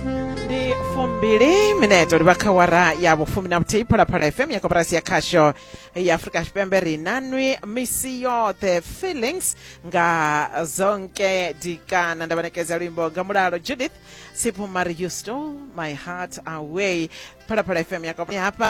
ndi fumbili mineto ri vha kha wara ya vhufumi na vhuthihi phalaphala fm ya koporasi ya khasho ya afurika tshipembe ri na nwi misi yoṱhe feelings nga zonke dikana nda vhanekedza luimbo nga mulalo judith siphumari you stole my heart away phalaphala fm ya koporasi hafha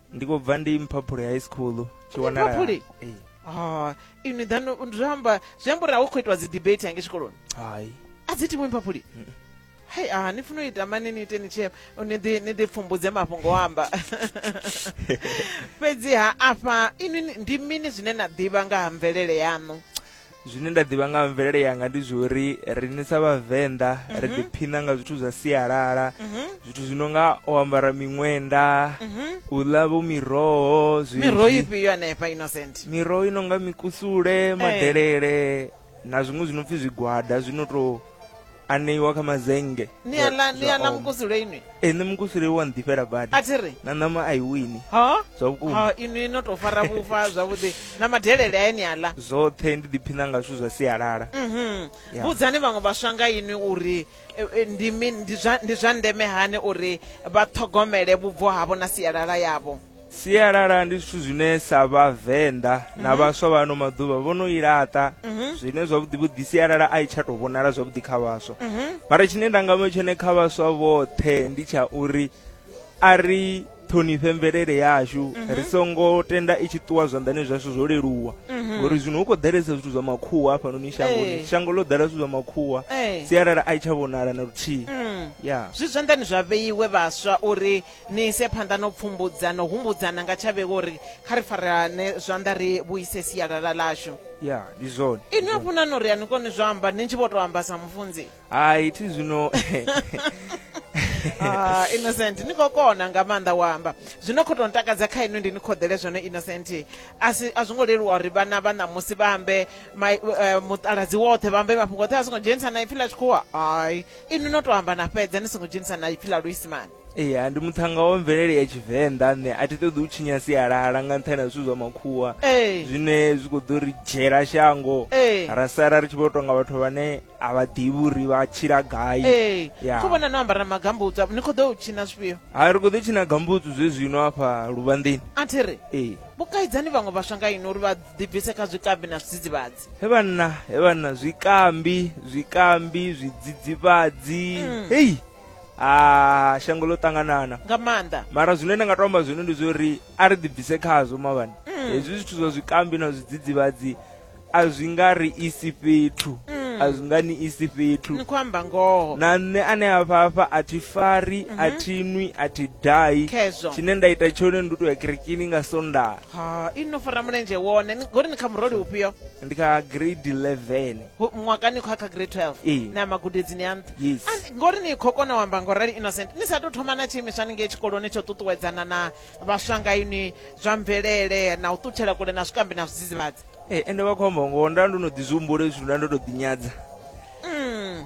ndi khou bva ndi mphaphuli high school tshi wanala mphaphuli ah ini then ndramba zwembo ra ukho itwa dzi debate yange tshikoloni hai a dzi timwe mphaphuli hai a ah, ni funa ita mani ni teni che ni ḓi ni ḓi pfumbudze mafhungo amba fhedzi ha afha ini ndi mini zwine na ḓivha nga ha mvelele yanu zwine nda ḓivha nga mvelele yanga ndi zwori riṋe sa vhavenḓa mm -hmm. ri mhm. ḓiphina nga zwithu zwa sialala mm -hmm. zwithu zwi no nga o ambara miṅwenda mm -hmm. u ḽa vho miroho miroho ifhio anefha innocent miroho i no nga mikusule eh. madelele hey. na zwiṅwe zwi no pfi zwigwada zwi no tou aneiwa kha mazenge ni a ḽa ni a na mukusule inwi e nṋe mukusule wa nḓifhela badi a thi ri na ṋama a i wini ha zwa vhukuma ha inwi no tou fara vhufa zwavhuḓi na madelele aye ni a ḽa zwoṱhe ndi ḓiphina nga zwithu zwa sialala mhm. Ya. vhudzani vhaṅwe vhaswa nga inwi uri e, e, ndi mini ndi zwa ndi zwa ndeme hani uri vha ṱhogomele vhubvo havho na sialala yavho sialala ndi zwithu zwine sa vhavenḓa na mhm. vhaswa vha ano maḓuvha vho no i laṱa mhm. zwine zwavhuḓi vhuḓi sialala a i tsha tou vhonala zwavhuḓi kha vhaswa mhm. mara tshine nda nga vha tshone kha vhaswa vhoṱhe ndi tsha uri a ri ṱhonifhe mvelele yashu ri songo tenda i tshi ṱuwa zwanḓani zwashu zwo leluwa ngori zwino hu khou ḓalesa zwithu zwa makhuwa hafhanoni shangoni shango ḽo ḓala zwithu zwa makhuwa sialala a i tsha vhonala na luthihi mm. ya zwi zwanḓani zwa vheiwe vhaswa uri ni ise phanḓa no pfumbudza no humbudzana nga tsha vhego uri kha ri farane zwanḓa ri vhuise sialala lashu ya ndi zwone inwi a funa no ri a ni koni zwo amba ni tshi vho tou amba sa mufunzi hai thi zwino Ah, innocent ni khou kona nga maanḓa u amba zwino khou tou ntakadza kha inwi ndi ni khoḓele zwone innocent a si- a zwo ngo leluwa uri vhana vha ṋamusi vha ambe mai- eh, muṱaladzi woṱhe vha ambe mafhungo oṱhe a songo dzhenisa na ipfi ḽa tshikhuwa ai inwi no tou amba na fhedza ni songo dzhenisa na ipfi ḽa luisimane ee ndi muthannga wa mvelele ya tshivenḓa nṋe a thi ṱoḓi u tshinya sialala nga nṱhani ha zwithu zwa makhuwa zwine zwi khou ḓo ri dzhela shango ra sala ri tshi vho tonga vhathu vhane a vha ḓivhi uri vha tshila gai kho vhona no ambara magambutsa ni khou ḓo u tshina zwifhio ha ri khou ḓo tshina gambutsu zwe zwino afha luvhanḓeni a thi ri ee vhukaidzani vhaṅwe vhaswa nga ino uri vha ḓibvise kha zwikambi na zwidzidzivhadzi he vhanna he vhanna zwikambi zwikambi zwidzidzivhadzi mm. hei hey. a shango ḽo ṱanganana nga maanḓa mara zwine nda nga to amba zwino ndi zwo uri a ri ḓibvise khazwo mavhani mm. hezwi zwithu zwa zwikambi na zwidzidzivhadzi a zwi nga ri isi fhethu mm. a zwi nga ni isi fhethu ni khou amba ngoho na nṋe ane a fhafha a thi fari mm -hmm. a mhm. thi nwi a thi dai tshine nda ita tshone ndi u tou ya kerekini nga sondaha ha i no fara mulenzhe wone ngori ni kha muroli ufhio ndi kha grade 11 mwakani khou ya kha grade 12 ee. na magudedzini a nṱha Yes. And ngori ni khou kona u amba ngo rali innocent ni sa tou thoma na tshiimiswa ni ngei tshikoloni tsho ṱuṱuwedzana na vhaswa nga inwi zwa mvelele na u ṱutshela kule na zwikambi na zwidzidzivhadzi Eh, ende vha khou amba ngoho nda ndo no ḓi zwi humbula hezwi zwithu nda ndo tou ḓinyadza Mm.